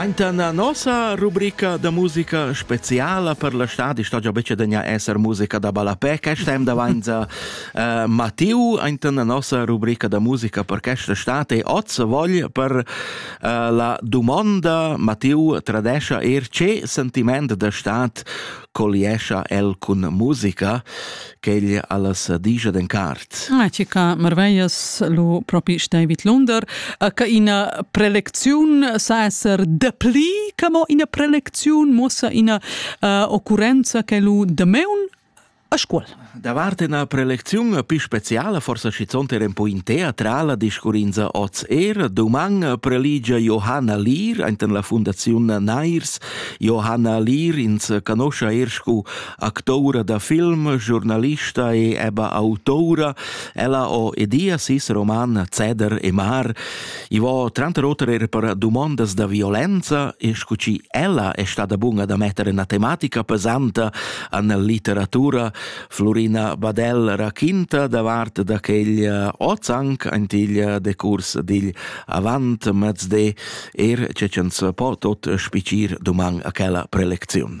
Aintan la nossa rubrica da musica speciala per la stadi sta già becce degna esser musica da ballapè questa em davanza uh, Mattiu aintan la nossa rubrica da musica per questa state oz vogl per uh, la domanda Mattiu tradescia er ce sentiment da stat colliescha el cun musica queglia alla sadigia d'encart. Ma che ca marveias lo propi David Lunder, che ina prelecziun sa esser depli che mo ina prelecziun mossa ina uh, occurrenza che lo de meun a scuola. Davart una prelezione più speciale, forse schizont era un po' in teatrala, discurrinza oz er, doman preligia Johanna Lier, enten la Fondazione Nairs. Johanna Lier ins canoscia er scu actoura da film, giornalista e eba autoura, ella ho edia sis roman Ceder e Mar. I vo tranter oter er per dumondas da violenza e scu ci ella è stata bunga da mettere una tematica pesanta an litteratura, Florina Badel raquinta davart da quegl ozanc antigl decurs digl avant mezde, er ce ch'ans po tot spicir duman a quella preleziun.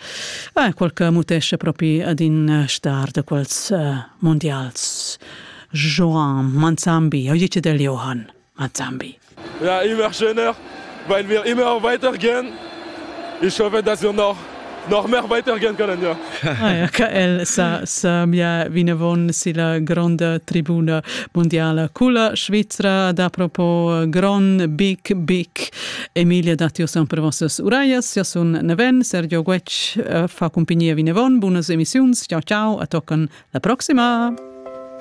Ah, quel che mutesce propi ad in eh, star de quels uh, mondials. Joan Manzambi, eu dice del Johann Manzambi. Ja, immer schöner, weil wir immer weitergehen. Ich hoffe, dass wir noch noch mehr weitergehen können, ja. Ah, ja che el sa, sa mia vinavon silla gronda tribuna mundiala culla Svizra ad apropos gron, big, big Emilia datti sun per vossas uraias. Jo sun Neven, Sergio Guetg uh, fa cumpagnia vinavon. Bunas emissiuns, ciao ciao, a toccan la proxima!